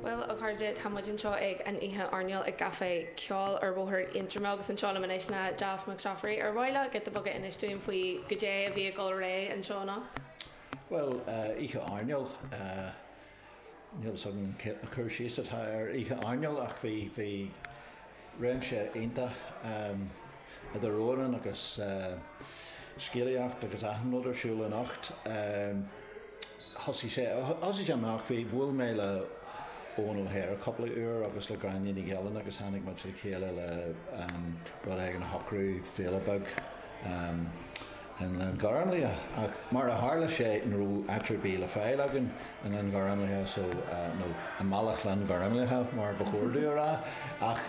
Bhuel, a chairde, tá muid anseo ag an oíche airneáil ag Caifé Ceoil ar Bhóthar Aontroma agus anseo liom anois ná Daft Mac Staffery. Ar mhaith leat giota beag a inse dúinn faoi goidé a bhí ag dul ar aghaidh anseo anocht? Bhuel, oíche airneáil, níl fhios agam cad é an cur síos atá ar oíche airneáil ach bhí, bhí, réimse iontach idir amhráin agus scéalaíocht agus achan rud ar siúl anocht. Thosaigh sé, thosaigh sé amach, bhí, bhuail mé le Eoghan O'Hare cúpla uair agus le Gráinne Ní Ghilín agus tháinig muid le chéile le rud éigin a shocrú, féile beag. i nGleann Ghormlaithe, ach mar a tharla sé ní raibh áit ar bith le fáil againn i nGleann Ghormlaithe so, nó i mBealach Ghleann Ghormlaithe mar ba chóir dúinn a rá, ach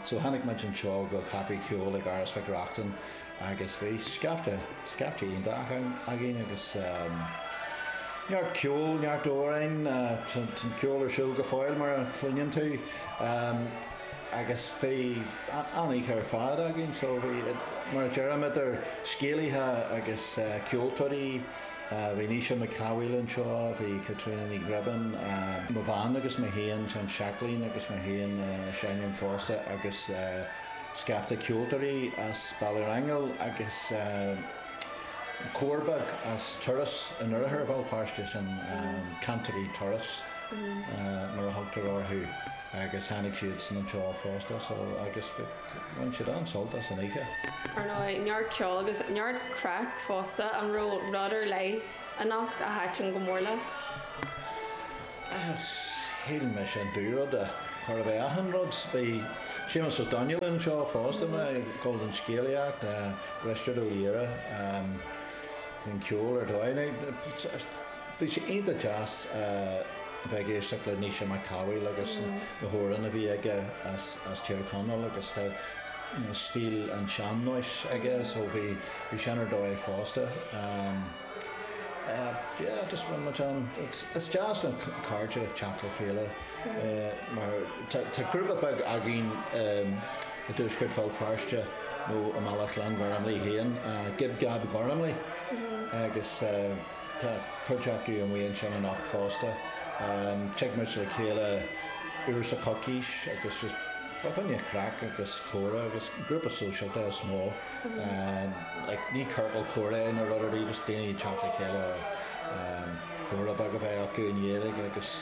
so tháinig muid anseo go Caifé Ceoil ag Áras Mhic Reachtain agus bhí scaifte, scaifte iontach againn agus neart ceoil, neart amhrán, tá an ceol ar siúl go fóill mar a chluineann tú. agus bhí an-oíche ar fad againn so bhí, mar a deirim, idir scéalaithe agus ceoltóirí, bhí Naoise Mac Cathmhaoil anseo, bhí Caitríona Ní Ghribín, mo bhean agus mé féin, Seán Seachlaín agus mé féin, seinneann fosta agus scaifte ceoltóirí as Béal Átha an Airgid agus cór beag as Turas in oirthear Bhéal Feirste, sin Cantairí Turas mar a thugtar orthu. Agus tháinig siadsan anseo fosta so agus bhain siad an-sult as an oíche. Ar dóigh, neart ceoil agus neart craic fosta. An raibh rud ar leith anocht a thaitin go mór leat? Shíl mise an dú-rud a chor a bheith achan rud. Bhí Séamus Ó Domhnaill anseo fosta maidir leis an scéalaíocht, Risteard Ó Laoghaire, an ceol ar dóigh. Bhí sé iontach deas a bheith ag éisteacht le Naoise Mac Cathmhaoil agus na hamhráin a bhí aige as Tír Chonaill agus tá stíl an tsean-nóis aige so bhí sé ar dóigh fosta. Yeah just bhain muid ann. Is deas na cairde teacht le chéile mar tá grúpa beag againn i dtuaisceart Bhéal Feirste nó i mBealach Ghleann Ghormlaithe féin, Gib Gab Gormley agus eh, Tá cuid acu amuigh ansin anocht fosta. Tig muid le chéile uair sa choicís agus just fá choinne craic agus comhrá agus grúpa sóisialta is mó. Like ní ciorcal comhrá nó rud ar bith just daoine ag teacht le chéile comhrá beag a bheith acu i nGaeilge agus.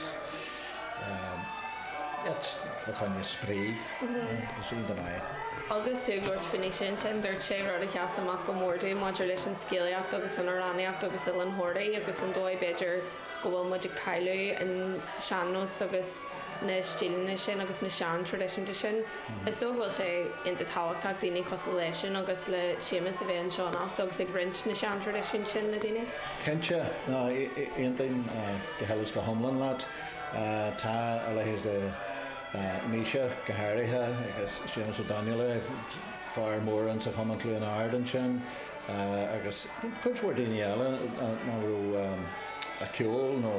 Agus tú ag labhairt faoin fhís ansin, dúirt sé rud a sheas amach go mór domh maidir leis an scéalaíocht agus an amhránaíocht agus Oileán Thoraí agus an dóigh b'fhéidir go bhfuil muid ag cailleadh an sean-nós agus na stíleanna sin agus na sean-traidisiúin sin. Is dóigh go bhfuil sé iontach tábhachtach daoine cosúil leis'sean agus le Séamus a bheith anseo anocht agus ag roinnt na sean-traidisiún sin le daoine. Cinnte, aontaím. Go huile 's go hiomlán leat. Tá a leithéid de Naoise, go háirithe, agus Séamus Ó Domhnaill, fear mór ins a' Chumann Cluain Árd ansin, agus cuid mhór daoine eile a raibh a' ceol nó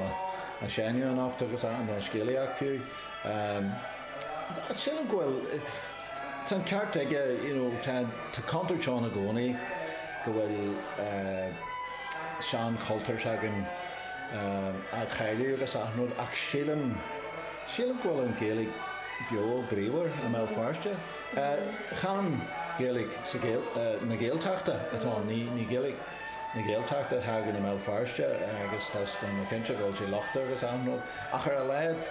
a' seinneadh anocht agus i mbun scéalaíocht fiú. Sílim go bhfuil. Tá an ceart aige, you know, tá contúirt ann i gcónaí go bhfuil sean-chultúr s'againn á chailleadh agus achan rud ach sílim, sílim go bhfuil an Ghaeilge beo bríomhar i mBéal Feirste. Chan Gaeilge na Gaeltachta atá ann, ní Gaeilge. na Gaeltachta atá againn i mBéal Feirste agus tá mé cinnte go bhfuil sé lochtach agus achan rud ach ar a laghad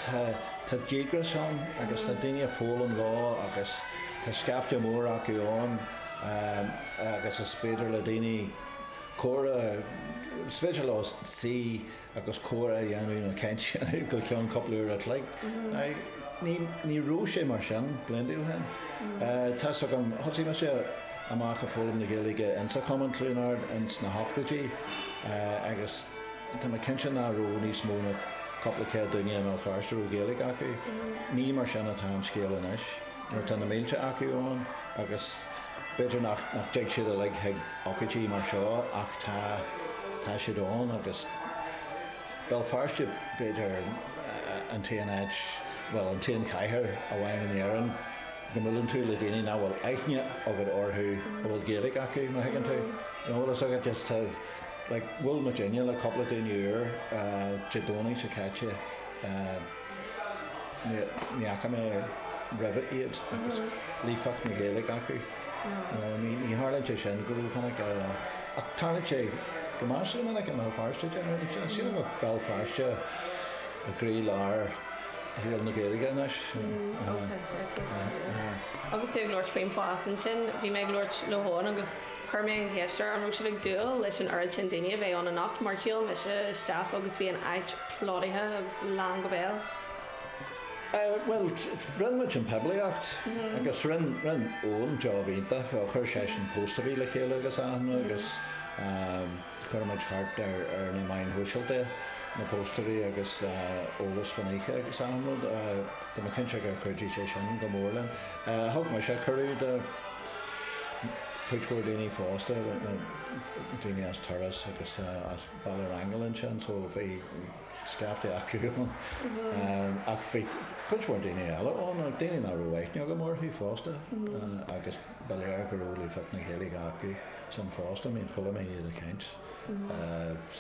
tá díograis ann agus tá daoine ag foghlaim leo agus tá scaifte mór acu ann agus is féidir le daoine comhrá, is féidir leo suí agus comhrá a dhéanamh nó caint go ceann cúpla uair a chloig. Ní raibh sé mar sin blianta ó shin. Tá's agam, thosaigh mise amach a' foghlaim na Gaeilge insa Chumann Chluain Árd ins na hochtóidí agus tá mé cinnte ná raibh níos mó ná cúpla céad duine i mBéal Feirste a raibh Gaeilge acu. Ní mar sin atá an scéal anois nuair atá na mílte acu ann agus. B'fhéidir nach dtig siad uilig chuig ócáidí mar seo ach tá, tá siad ann agus Béal Feirste b'fhéidir an t-aon áit, bhuel an t-aon chathair amháin in Éirinn go mbuaileann tú le daoine nach bhfuil aithne agat orthu a bhfuil Gaeilge acu, má thuigeann tú. An bhfuil fhios agat just tá, like, bhuail muidinne le cúpla daoine úr Dé Domhnaigh seo caite, ní fhaca mé roimhe iad agus líofacht na Gaeilge acu. Ní tharlaíonn sé sin go rómhinic ach tarlaíonn sé go measartha minic i mBéal Feirste deir mé leat. Sílim go bhfuil Béal Feirste i gcroílár shaol na Gaeilge anois. Agus tú ag labhairt faoin bhfás ansin, bhí mé ag labhairt le hEoghan agus chuir mé an cheist air an raibh sibh ag dúil leis an oiread sin daoine a bheith ann anocht mar shiúil mise isteach agus bhí an áit plódaithe agus lán go béal. Bhuel, rinn muid an phoiblíocht agus rinn Eoin job iontach, chuir seisean póstaerí le chéile agus a leithéid agus chuir muid thart ar na meáin shóisialta na póstaerí agus eolas faoin oíche agus achan rud. Tá mé cinnte gur chuidigh sé sin go mór linn. Thug mise cuireadh do cuid mhór daoine fosta, daoine as Turas agus as. Baile Ghormáin ansin so bhí scaifte acu ann ach bhí cuid mhór daoine eile ann ach daoine nach raibh aithne agam orthu fosta agus ba léir go raibh líofacht na Gaeilge acusan fosta, I mean chuala mé iad ag caint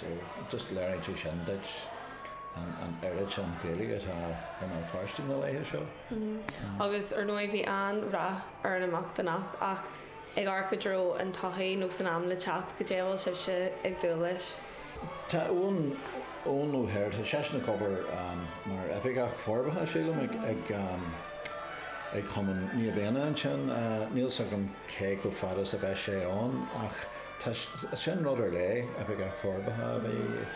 so just léiríonn sé sin duit an oiread sin Gaeilge atá i mBéal Feirste na laetha seo. Agus ar ndóigh bhí an-rath ar an imeacht anocht ach ag amharc i dtreo an todhchaí nó san am le teacht, caidé a bhfuil sibhse ag dúil leis. Tá Eoin, Eoin Ó hAirt, tá seisean ag obair mar Oifigeach Forbartha, sílim, ag, ag Cumann Naomh Éanna ansin. Níl 's agam cé chomh fada is a bheas sé ann ach tá, sin rud ar léith, Oifigeach Forbartha a bheith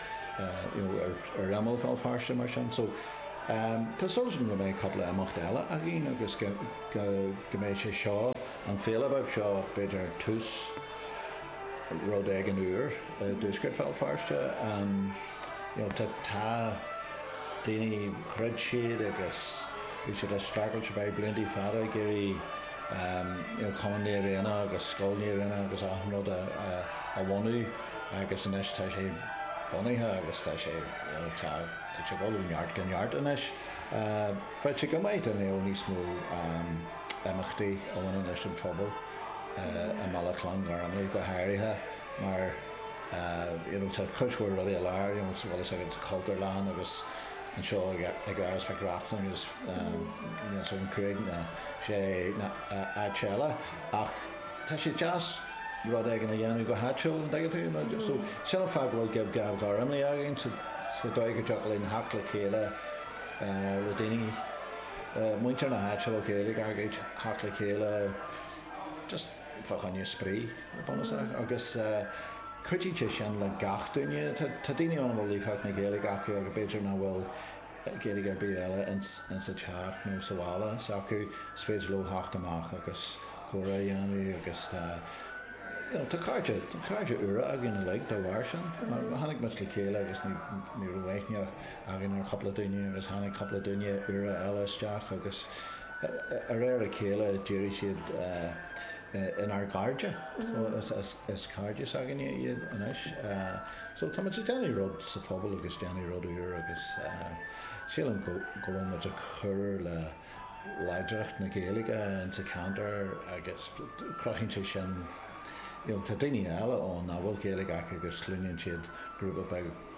you know ar, ar imeall Bhéal Feirste mar sin. So tá súil agam go mbeidh cúpla imeacht eile againn agus go, go mbeidh sé seo, An fhéile bheag seo b'fhéidir tús rud éigin úr i dtuaisceart Bhéal Feirste. You know tá tá daoine throid siad agus bhí siad ag streachailt le blianta fada ag iarraidh you know Cumann Naomh Éanna agus Scoil Naomh Éanna agus achan rud a a bhunú agus anois tá sé bunaithe agus tá sé you know tá tá sé ag dul ó neart go neart anois. Bheadh sé go maith dá mbeadh níos mó imeachtaí a bhaineann leis an phobal i mbaile Ghleann Ghormlaithe go háirithe mar you know tá cuid mhór rudaí i lár you know sa bhfuil fhios agat sa Chultúrlann agus anseo in Áras Mhic Reachtain agus you know so cúig nó sé áit eile ach tá sé deas rud éigin a dhéanamh go háitiúil an dtuigeann tú you know so sin an fáth go bhfuil Gib Gab Ghormáigh againn sa dóigh go dtiocfadh linn theacht le chéile le daoine muintir na háite le chéile, ag theacht le chéile just fá choinne spraoi go bunúsach agus cuidíonn sé sin le gach duine. Tá daoine ann a bhfuil líofacht na Gaeilge acu agus b'fhéidir nach bhfuil Gaeilge ar bith eile ins a' teach nó sa bhaile s'acu, is féidir leo theacht amach agus comhrá a dhéanamh agus tá you know, tá cairde, cairde úra againn uilig dá bharr sin. Tháinig muid le chéile agus ní raibh aithne againn ar chupla duine agus tháinig cupla duine úra eile isteach agus a réir a chéile d'éirigh siad inár gcairde agus is cairde s'againne iad anois. So tá muid ag déanamh rud sa phobal agus déanamh rud úr agus sílim go bhfuil muid ag cur le láidreacht na Gaeilge ins a' ceantar agus cruthaíonn sé sin you know tá daoine eile ann nach bhfuil Gaeilge acu agus cluineann siad grúpa beag